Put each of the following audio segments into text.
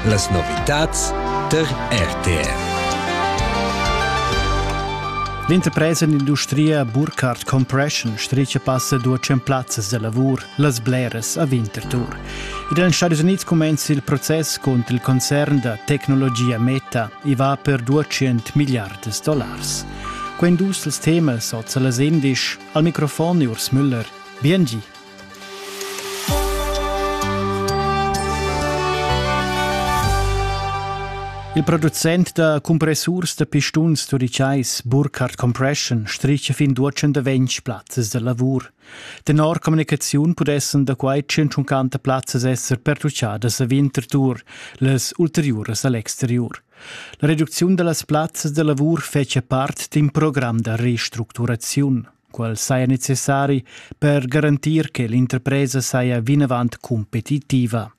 Las novitads tar RTR. L'interpresa d'industria Burkhardt Compression stricia passa due cent plazzas de lavur las bleras a Winterthur. Negli Stati Uniti comincia il processo contro il concern da tecnologia Meta e va per 200 miliardi di dollars. Quando dus temas sono las 11, al microfono Urs Müller. Bien Il producent da compressurs da pistuns turitschais Burkhardt Compression stricha fin duecentaventg plazzas da lavur. Tenor communicaziun pudessan da quai 150 plazzas esser pertuchadas a Winterthur, las ulteriuras a l'exteriur. La reducziun da las plazzas da lavur fetschia part d'in program da restructuraziun. qual saja necessari per garantir che l'interpresa saja vinavant competitiva.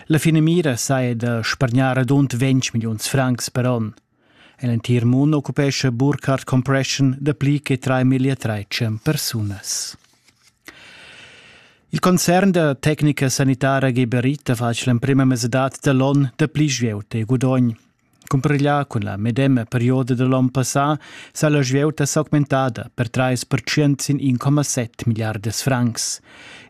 La finamira saja da spargnar radund 20 milliuns francs per onn. En l'entir mund occupescha Burkhardt Compression dapli che 3.300 persunas. Il concern da tecnica sanitara Geberit ha fatg l'emprima mesadad da l'on da pli svelt e gudogn. Cumpareglià cun la medema perioda da l'on passà s'ha la svieuta s'augmentada per trais pertschient sin 1,7 milliardas francs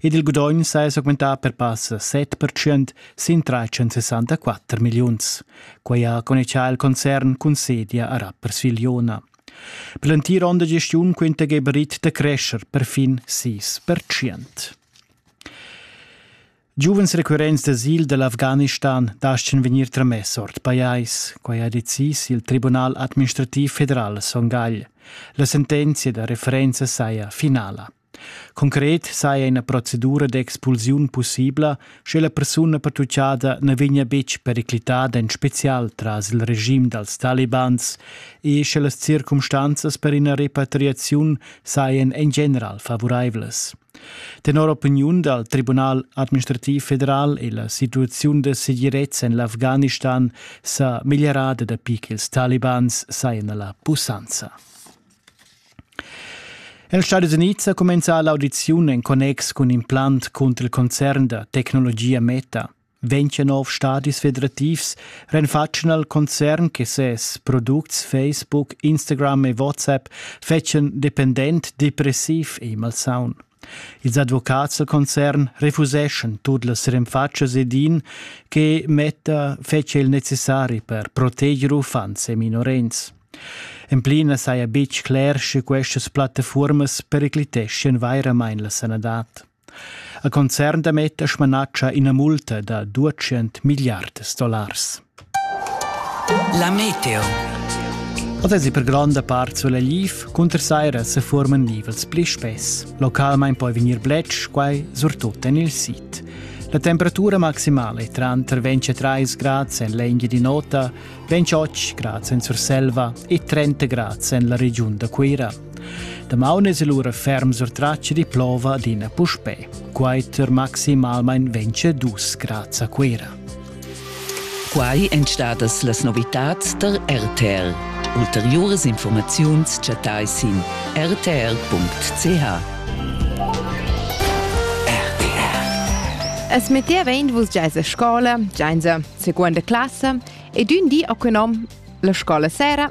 ed il gudogn s'ha s'augmentà per passa 7 pertschient sin 364 milliuns. Quai ha connexà il concern cun sedia a Rapperswil-Jona. Per l'entir onn da gestiun quinta Geberit da crescer per fin 6 pertschient. Giuvens recurrents d'asil dall'Afghanistan dastgan vegnir tramess ord pajais, quai ha decis il Tribunal administrativ federal Son Gagl. La sentenzia da referenza saja finala. Concret saja ina procedura d'expulsiun pussibla, sche la persuna pertutgada na vegnia betg periclitada en spezial tras il regim dals talibans e sche las circumstanzas per ina repatriaziun sajan en general favuraivlas. Tenor opiniun dal Tribunal administrativ federal è la situaziun da segirezza en l'Afghanistan sa meglierada dapi ch'ils talibans sajan a la pussanza. En els Stati Unids ha cumenzà l'audiziun en connex cun in plant cunter il concern da tecnologia Meta. Ventg nov stadis federativs renfatschen al concern che ses products Facebook, Instagram e WhatsApp fetschan dependent, depressiv e malsaun. Ils advocats del concern refuseschan tut las renfatschas ed in che metta fece il necessari per proteger uffants e minorens. En plina saja betg cler, sche questas plattaformas pericliteschien vairamain la sanadad. A concern da metter smanatscha ina multa da duecent milliards dollars. La meteo. Oz è per gronda part sulla liv, cunter saira se forman livels pli spess. Localmain poi vegnir bletsch, quai surtut en il sit. La temperatura maximale è tranter 23 grad en l'Enghia di Nota, 28 grad en Surselva e 30 grad en la regiun da Cuira. Damaun es el ura ferm sur traccia di plova adina puspè. Quaiter maximalmain vence dus grads a Cuera. Quai èn stadas las novitads tar RTL. Ulteriuras informaziuns chattai sin rtl.ch. Es metteva in vus giaisa scola, giaisa seconda classe ed un di a nom la scola sera